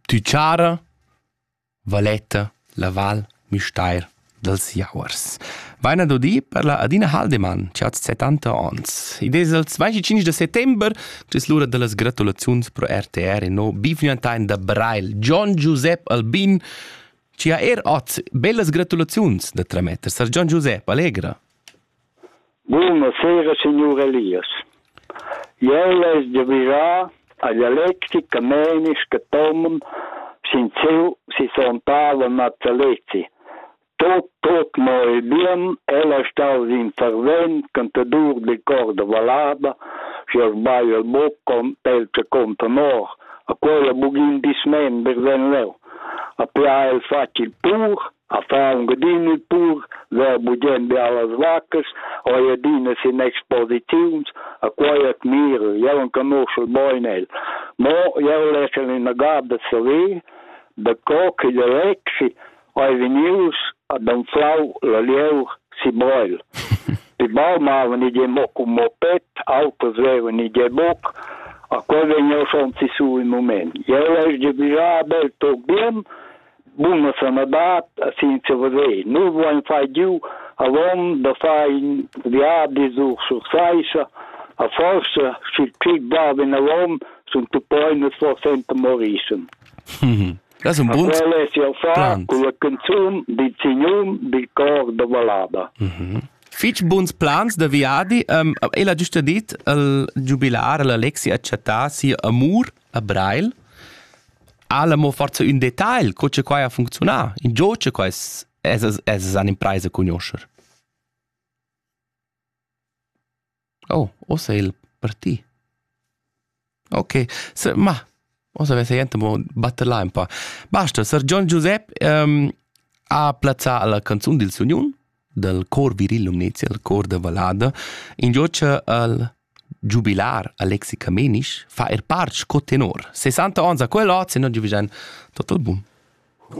Tü chara Valetta la Val Müstair dals Jauers. Vaina do di per la Adina Haldemann, chi ha 70 ons. Id es il 25 de settember, tes l'ura da las gratulaziuns pro RTR e no bivgnantain da Brail, Gian Giusep Albin, chi ha er ot bellas gratulaziuns da trametter. Sar Gian Giusep, allegra! Buna sera signur Elias. Jeu less giavischar agl Alexi Camenisch che Tomen sin siu sisontavel natalezi. Tut, tut mo il bien, el ha staus in fervent cantadur de cor de vallada si ha sbagliato il bucco pel che conta nor, a quella bugin dismember ven leu. A pia el facil pur, a fa ungedin il pur ver bugen be allas vaccas ho ei adina sin exposiziuns a quei admiro jeu non conosco bein el mo jeu leschel ina gada saver da co che de lexi hai venius ad anflau la lieur si Breil. Die Baum haben nicht den Bock um Moped, Autos wären nicht den Bock, a quel wenn ja schon zu so im Moment. Jeu lesch de bija bel to bim, bun a sana dat a sin se vade nu voin fai giu avon da fai viadi sur sur saisha a forsa schi'l pig dava in avon sun tu poi nus forsenta morischen Das un bunt quel es jau fa con la canzun di signum di cor da balada fich buns plans da viadi um, e la giusta dit al giubilar l'Alexi ha chattà sia amur a Breil, alla mo forza ün detagl, co che quai ha funzionà, in gio che quai es, es an impresa conoscer. Oh, o sei il per ti. Ok, se, ma, o se vese gente mo batter là un po. Basta, Sir John Giuseppe um, ha plazzà la canzun del Union, del cor viril Lumnezia, il cor de Valada, in gio che al Giubilar Alexi Camenisch fa er part sco tenor. 60 onns ha quel ot, se non giuvischan tot il bun.